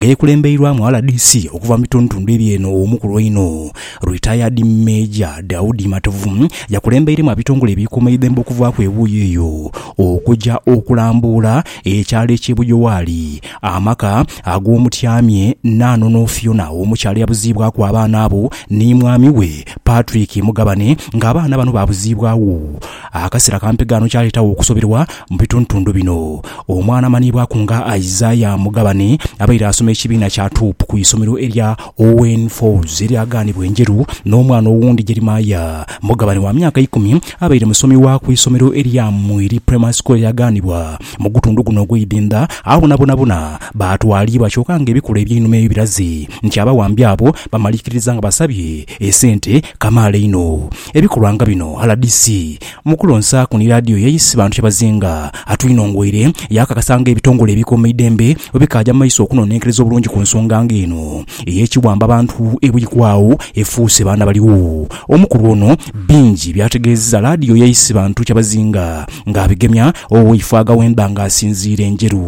Eyekulembeirwamu rdc okuva mu bitundutundu ebyeno omukulu einho Retired Major Daudi Matovu yakulembeiremu abitongole ebikuuma eidhembe okuvaaku ebuuyi eyo okuja okulambuula ekyalo ekye Bujowaali amaka ag'omutyamye Nanono Fiona omukyala eyabuziibwaku abaana abo ni mwami we Patrick Mugabane nga abaana bano babuziibwagho Akasera kampi ghano kyaleetagho okusoberwa mu bitundutundu bino. Omwana amanhiibwaku nga Isaiah Mugabane abaire asoma ekibiina kya Tuup ku isomero erya Owen Falls eryagaanibwa Enjeru n'omwana owundi Jeremiah Mugabane wa myaka ikumi abaire musomi wa ku isomero erya Mwiri Primary School eryagaanibwa mu gutundu guno ogw'e Idhindha. Abo na bonabona baatwaliibwa kyoka nga ebikula eby'einhuma ebyo biraze nti abawambi abo bamaliikiriza nga basabye esente kamaala einho. Ebikolwa nga bino rdc mu kulonsaaku ni laadiyo ye isi bantu kyebazinga. Atwinongweire yaakakasa nga ebitongole ebikuuma eidembe bwe bikaaja mu maiso okunonenkereza obulungi ku nsonga nga eno ey'ekiwamba bantu ebwikwagho efuuse baana baligho. Omukulu ono bingi by'ategeezezza laadiyo ye isi bantu kyebazinga ng'abigemya oweifwaga w'emba ng'asinziira e Njeru.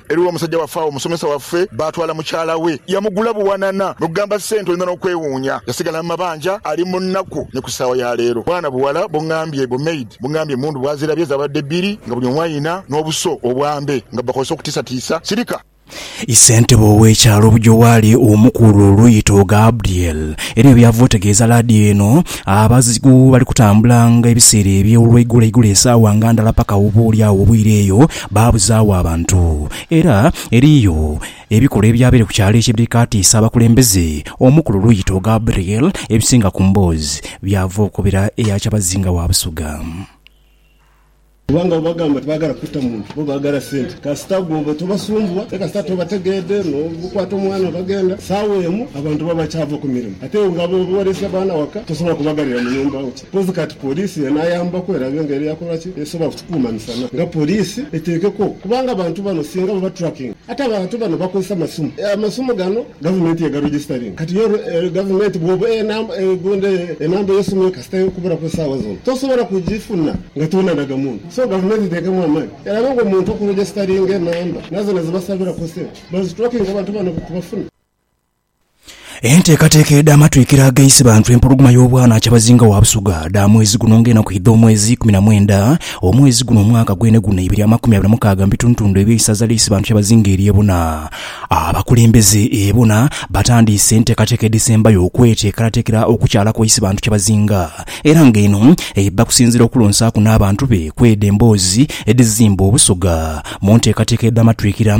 Eriwo omusajja waffe agho, omusomesa waffe, baatwala mukyala we. Yamugula buwanana n'okugamba sente oyinza n'okwewuunya. Yasigala mu mabanja, ali mu nnaku ni ku saagha ya leero. Bwana buwala bungambye, bu maid bungambye emmundu bwazirabye zaabadde bbiri nga buli omu alina n'obuso obwambe nga bubakozesa okutiisatiisa sirika. Ssentebe ow'ekyalo Bujowaali Omukulu Luyito Gabriel eriyo byava otegeeza laadiyo eno, abazigu bali kutambula nga ebiseera eby'olweigulo igulo esaawa nga ndala paka oba oli agho obwire eyo, Baabuzaagho abantu. Era eriyo ebikolwa ebyabaire ku kyalo ekyo ebikaatiisa abakulembeze. Omu ku luluuyi to Gabriel ebisinga ku mboozi byava okukobera eya kyabazinga wa Busoga. Kubanga bwe bagamba tibaagala kutta muntu, bo baagala sente. Kasita gwe oba tobasumbuwa, aye kasita tobategeedhe n'okwata omwana bagenda, saawa emu abantu baba bakyaava ku mirimu. Ate iwe nga bw'oba oleese abaana waka, tosobola kubaghalira mu nhumba. Mpozi kati poliisi y'enaayambaku erabe nga era yakola ki esobola ku kikuuma misana nga poliisi eteekeko kubanga abantu bano singa baba tracking ate abantu bano bakozesa masimu, amasimu gano gavumenti yegaregisitaringa kati yo gavumenti bw'oba eguunda enamba y'esimu yo kasita ekubulaku esaawa zona tosobola kugifuna nga tonanaga muntu so gavumenti eteekemu amaani erabe nga omuntu okuregisitaringa enamba nazo nezibasabiraku sente bazitrakinge abantu bano tubafune. Enteekateeka edh'amatwikiro ag'ensi bantu empologoma y'obwanaakya Bazinga wa Busoga dha mwezi guno ng'enaku edh'omwezi ikumi na mwenda omwezi guno omwaka gweneguna eibiri amakumi abiri na mukaaga mu bitundutundu eby'eisaza ly'eisi bantu ya Bazinga erye bona. Abakulembeze e bona batandiise enteekateeka edhisembayo okweteekerateekera okukyala kw'eisi bantu kya Bazinga era ng'eno ebba kusinziira okulonsaaku n'abantu be kw'edho emboozi edhizimba Obusoga mu nteekateeka edh'amatwikira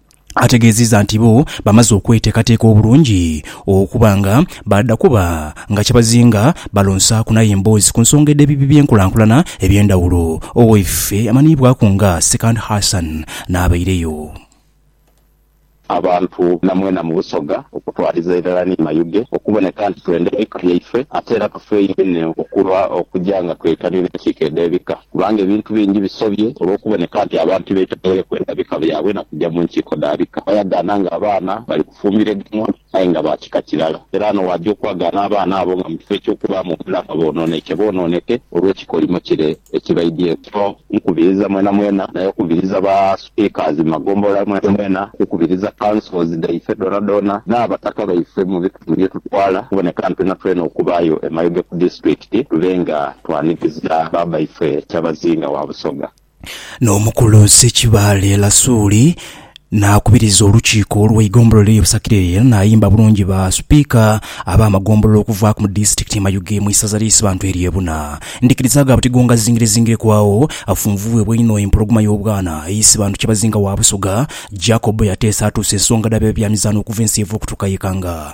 ategeziiza nti bo bamaze okweteekateeka obulungi okuba nga baadha kuba nga kyebazinga balonsaaku nayo emboozi ku nsonga edh'ebibi by'enkulankulana eby'endhawulo. Owaife amanhiibwaku nga Sekandi Hassan n'abaireyo. Abantu na mwena mu Busoga okutwaliza irala ni Mayuge okuboneka nti twenda ebika byaife ate era tufeeyo inho okulwa okuja nga twetanira enkiiko edh'ebika. Kubanga ebintu bingi bisobye olw'okuboneka nti abantu tibeetegeire kwenda bika byabwe na kuja mu nkiiko dha bika. Bayagaana ng'abaana bali kufumbiriganwa aye nga ba kika kirala. Era ghano waagya okwagaana abaana abo nga mu kifo eky'okubaamu obulaama boonooneke boonooneke olw'ekikolimo kire ekibaidhieku. So nkubiriza mwenamwena, naye okubiriza ba. Ikaazima gombolola mwenamwena kukubiriza councils dhaife dhoonadhoona n'abataka baife mu bitundu bye tutwala okuboneka nti natwena okubaayo e Mayuge ku disitulikiti tube nga twaniriza baabaife Kyabazinga wa Busoga. N'omukulu Ssekibaale Lasuuli n'akubiriza olukiiko olw'eigombolola erye Busakireri era n'ayimba bulungi ba Sipiika ab'amagombolola okuva ku mu disitulikiti ye Mayuge mu isaza ly'Eisibantu erye Buna Ndhikiriza gha buti gongazingirezingireku agho afunvubwebwa einho empologoma y'obwana eise bantu Kyabazinga wa Busoga, Jacob yateesa atuuse esonga dha b'ebyamizaano okuva ensi eivaa okutuuka y'ekanga.